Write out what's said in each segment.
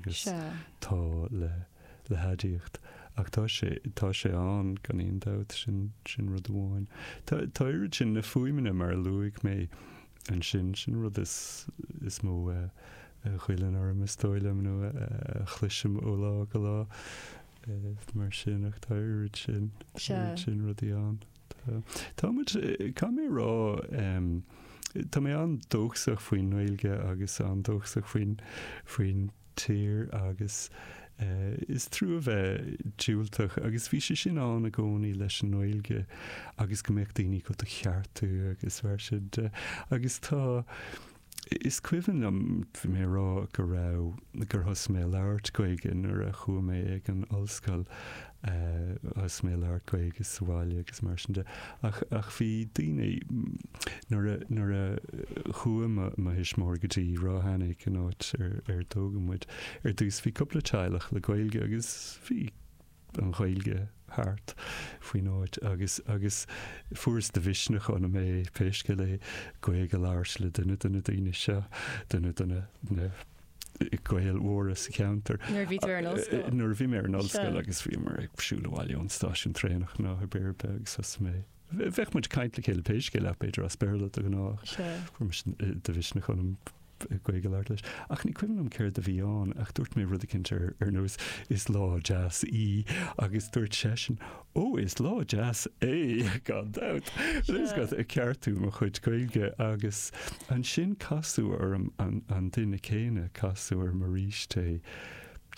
Is tá le le haidiacht. Ach tá sé tá sé ann gan aon dabht, sin sin rud amháin. Tá tá oiread sin na fuaimeanna mar a luaigh mé ansin sin rud is is mó a ghoilleann orm is dóigh liom nó a chloisim ó lá go lá mar sin ach tá oiread sin sin rudaí ann. Tá muid, caithfidh mé a rá, tá mé an-dóchasach faoin nGaeilge agus an-dóchasach faoin, faoin tír agus is trua a bheith diúltach agus bhí sé sin ann i gcónaí leis an nGaeilge agus go mbeadh daoine ag do cheartú agus mar sin de agus tá, Is cuimhin liom, bhí mé ag rá go raibh, gur thosaigh mé ag labhairt Gaeilge nuair a chuaigh mé ag an ollscoil, thosaigh mé ag labhairt Gaeilge sa bhaile agus mar sin de. Ach, ach bhí daoine, nuair a, nuair a chuaigh mo, mo thuismitheoirí go dtí Ráth Eanaigh, an áit ar, ar tógadh muid, ar dtús bhí cúpla teaghlach le Gaeilge agus bhí, an Ghaeilge thart faoin áit agus agus fuaireas de mhisneach ionam pé scéal é Gaeilge a labhairt le duine de na daoine seo, duine de na na Gaeil mhóra sa cheantar. Nuair a bhí tú ar an ollscoil? Nuair a bhí mé ar an ollscoil agus bhíomar ag siúl abhaile ón stáisiún traenach nó cibé ar bith agus thosaigh mé Bheadh muid ag caint le chéile pé scéal é b'fhéidir as Béarla de ghnáth. Fuair mise de mhisneach ionam Gaeilge a labhairt leis. Ach ní cuimhin liom céard a bhí ann ach dúirt mé rud eicínt ar ar nós 'Is lá deas í' agus dúirt seisean 'Ó, is lá deas é, gan dabht'. Rud is go raibh ag ceartú mo chuid Gaeilge agus ansin casadh orm an duine céanna, casadh orm arís é.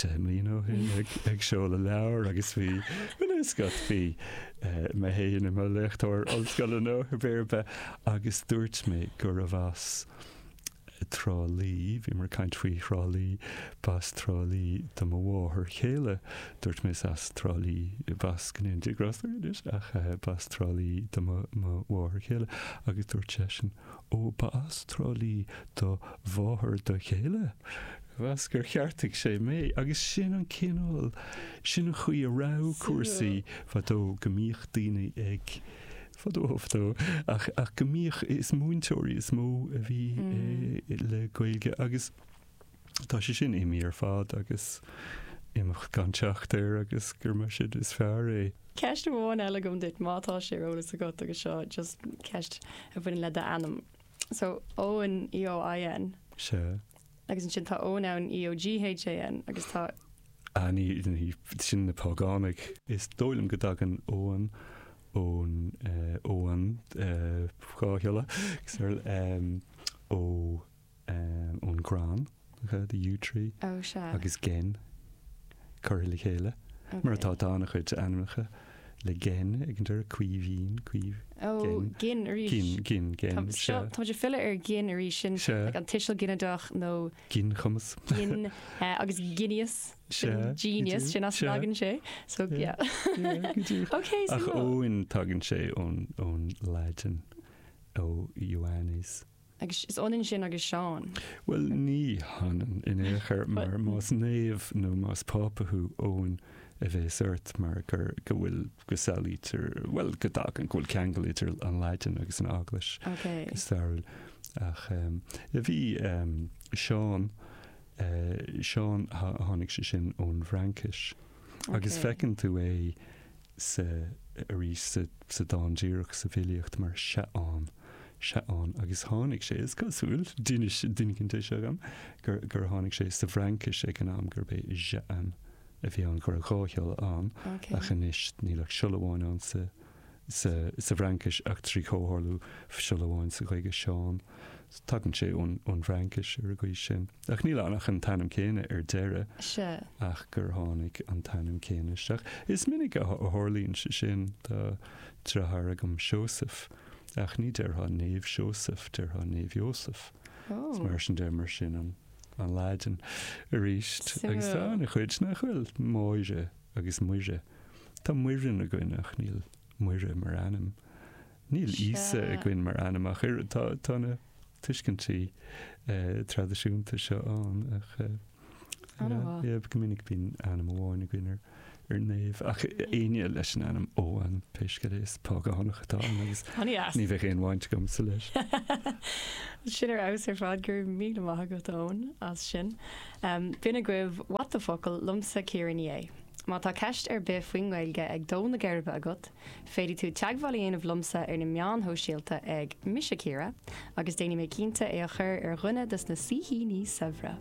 10 mbliana ó shin ag seoladh leabhar agus bhí an bhfuil a fhios agat, bhí mé féin i mo léachtóir ollscoile nó cibé ar bith agus dúirt mé gurbh as Trá Lí, bhíomar ag caint faoi Thrá Lí, b'as Trá Lí do mo mháthair chéile. Dúirt mé is as Trá Lí, b'as go ndéana Dia grásta air anois, ach b'as Trá Lí do mo mháthair chéile agus dúirt seisean Ó, ba as Trá Lí do mháthair do chéile? Mheas gur cheartaigh sé mé agus sin an cineál, sin an chaoi a raibh cúrsaí fadó, go mbíodh daoine ag, fadó, fadó, ach go mbíodh, is múinteoirí is mó a bhí le Gaeilge agus, Tá sé sin imithe ar fad agus imeacht gan teacht air agus gur mar sin is fearr é. Ceist amháin eile agam duit, má tá sé ar eolas agat, agus seo just ceist a bhaineann le d'ainm. So, Eoin, E-O-I-N. Sea. Agus ansin tá Eoghan ann, E-O-G-H-A-N, agus tá. Ah, ní, ní, sin na págánaigh. Is dóigh liom go dtagann Eoin ón, eh, Eoin, eh, dhá shiolla, agus ar, eh, ó. ón gcrann, the yew tree, agus gen. curtha le chéile, mar atá, tá an-chuid ainmneacha le gen ag an deireadh, Caoimhín, Caoimhghin. Ó, gin arís. Gin, gin, gen. Tá, seo, tá muid ag filleadh ar gin arís, sin like an tuiseal ginideach nó. Ginchumas. gin, agus genius, sin genius, sin as a dtagann sé, so yeah. go deimhin. Ok, so. Ach Eoin, tagann sé ón, ón Laidin, Ioannes. Agus is ionann sin agus Seán. Bhuel, ní hionann in aon chor, mar más naomh nó más Pápa thú, Eoin a bhéas ort mar gur, go bhfuil, go samhlaítear, bhuel, go dtagann, go bhfuil ceangal idir an Laidin agus an Eaglais go stairiúil. Ach bhí Seán, Seán, tháinig sé sin ón bhFraincis. Agus feiceann tú é sa, arís sa dán díreach, sa bhfilíocht mar Seaán. Seaán agus tháinig sé, is cosúil, d'inis duine éigin de seo dhom, gur tháinig sé sa bhFraincis ag an am, gurb é Jehan a bhí ann, go raibh dhá shiolla ann, ach anois níl ach siolla amháin ann sa bhFraincis ach trí chomhtharlú siolla amháin sa Ghaeilge, Seán. Tagann sé ón bhFraincis ar an gcaoi sin. Ach níl ann ach an t-ainm céanna ar deireadh ach gur tháinig an t-ainm céanna isteach. Is minic a tharlaíonn sé sin. Tá deartháir agam, Seósaf. Ach ní déarfá Naomh Seósaf, déarfá Naomh Iósaf. Is mar sin deir muid sin an Laidin arís. Agus tá an-chuid nach bhfuil, Máire agus Muire. Tá Muireann againn ach níl Muire mar ainm. Níl Íosa againn mar ainm ach oiread. Tá, tá na. tuiscintí traidisiúnta seo ann ach go minic bíonn ainm amháin againn ar naomh ach éinne leis an ainm Eoghan pé scéal é is págánach atá ann agus ní bheadh aon bhaint agamsa leis. Sin ar fheabhas ar fad, go raibh míle maith agat Eoin as sin. B'in agaibh What the Focal liomsa Ciara Ní É. Má tá ceist ar bith faoin nGaeilge ag dó na geirbe agat, Féadfaidh tú teagmháil a dhéanamh liomsa ar na meáin shóisialta ag, Mise Ciara, agus déanfaidh mé cinnte é a chur ar dhuine dos na saoithíní saibhre!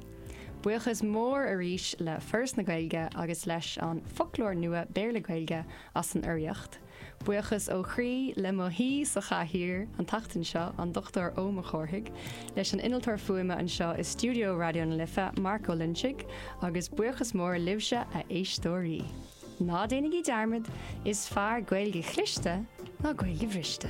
Buíochas mór arís le Foras na Gaeilge agus leis an bhFoclóir Nua Béarla-Gaeilge as an urraíocht. Buíochas ó chroí le mo shaoi sa chathaoir an tseachtain seo, an Dr Eoin Mac Cárthaigh, leis an innealtóir fuaime anseo i stiúideo Raidió na Life, Mark Ó Loinsigh, agus buíochas mór libhse, a éisteoirí! Ná déanaigí dearmad, is fearr Gaeilge chliste ná Gaeilge bhriste.